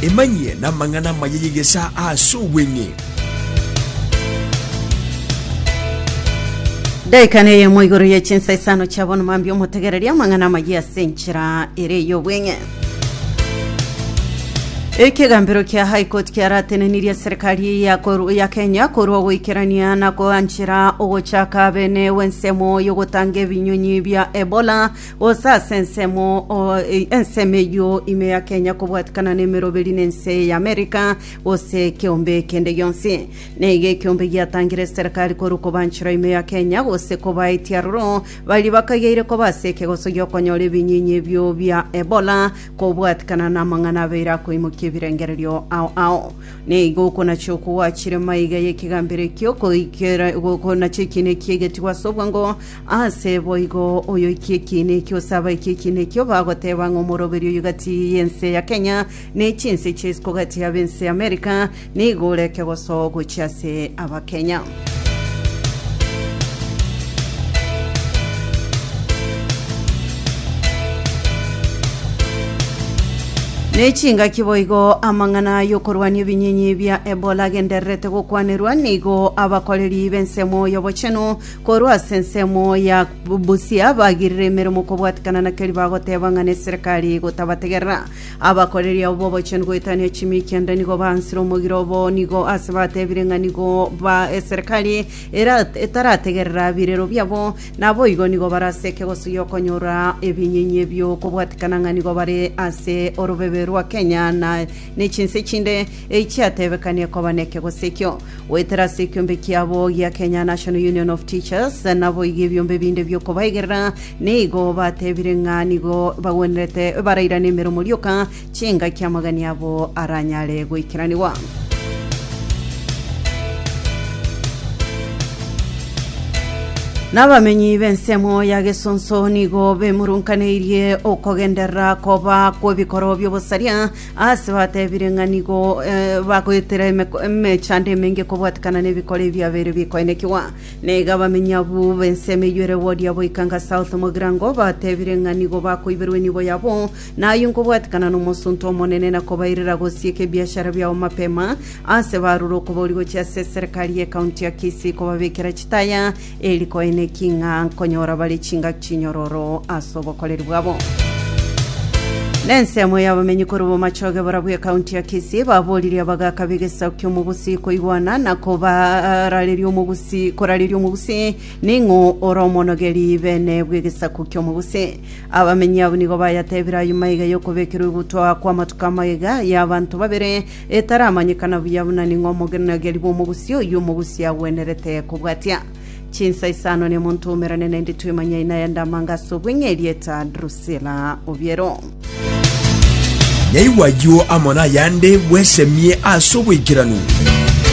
Emanyie namang'ana amaya y'egesaa aase obweng'e. Daika neyemo igoro ye chinsa isano chia bono mambia omotegereria amang'ana amayia ase enchera ere ey'obweng'e. Ekegambero kia High Court kiaratenenirie serikali eye ya koru- ya Kenya korwa ogoikerania na koanchera ogochaka bene w'ensemo y'ogotanga ebinyonyi bia Ebola Gose ase ensemo o, e, ensemo eyio ime ya Kenya kobwatikana n'emeroberi na ense ya America gose ekeombe ekende gionsi. Neiga ekeombe giatangire eserekari korwa kobanchora ime ya Kenya gose kobaetia aroro baria bakaigeire koba ase ekegoso giokonyora ebinyinyi ebio bia Ebola kobwatikana namang'ana abeire akoimokia ebirengererio ao ao. Neiga okonachia okogwachire maiga y'ekegambero ekio koikera gokonacha ekiina ekiya egetigwa ase obwango Aase boigo, oyoikia ekiina ekio osaba ekie ekiina ekio, bagoteba ng'a omoroberi oyo gati y'ense ya Kenya ne chinse chia isiko gati ya b'ense ya America nigo ore ekegoso gochia ase Abakenya. Ne chingaki boigo amang'ana y'okorwania ebinyinyi bia Ebola agendererete gokwanerwa, nigo abakoreri b'ensemo y'obochenu Korwa ase ensemo ya Busia bagirire emeremo kobwatekana na keria bagoteba ng'a neserekari gotabategerera. Abakoreri abo bobochenu goetania chimikia nda nigo baansire omogiro obo nigo ase batebire ng'a nigo ba eserekari era etarategerera birero biabo naboigo nigo baraseke gosuya okonyora ebinyenyi ebio kobwatekana ng'a nigo bare ase orobebe rwa Kenya na ne chinse chinde echiatebekanie koba nekegosio ekio. Goetera ase ekiombe kiabo gia Kenya National Union of Teachers, naboigo ebiombe ebinde bi'okobaigerera nigo batebire ng'a nigo bagwenerete barairane emeromo rioka chingaki amagani abo aranyare goikeranigwa. N'abamenyi b'ensemo ya Gesonso nigo bemurunkaneirie okogenderera koba kw'ebikoro by'obosaria Ase batebire ng'a nigo bagoetera emeko emechando emenge kobwatekana nebikoro ebiabeire bikoenekigwa. Na iga abamenyi abwo b'ensemo eyio ere Wodia boikanga South Mogirango batebire ng'a nigo bakoiberwa enibo yabo, na ayio nkobwatekana nomosunte omonene na kobairera gosieka ebiashara biabo mapema ase barure okobori gochia ase eserekari ye county ya Kisii kobabekera chitaya Eri koine ki ng'a nkonyora bare chingaki chinyororo ase obokoreri bwabo? Nensemo y'abamenyi korwa bomachoge barabwo ekaunti ya Kisii baboririe abagaaka b'egesaku ki'omogusii koigwana na kobarareria omogusii korareria omogusii ning'o ore omonogeri bene bw'egesaku ki'omogusii. Abamenyi abo nigo bayatebire aye maiga y'okobekerwa egutwa kw'amatuko amaiga y'abanto babere Etaramanyekana buya buna ning'o omogenonageri bw'omogusia oyio omogusia agwenerete kobwatia. Chinsa isano nemonto omerane naende twemanyai naye ande amanga ase obweng'e erieta Drusila Obiero. Yaigwa ayio amo nayande, bwesemie ase oboikeranu.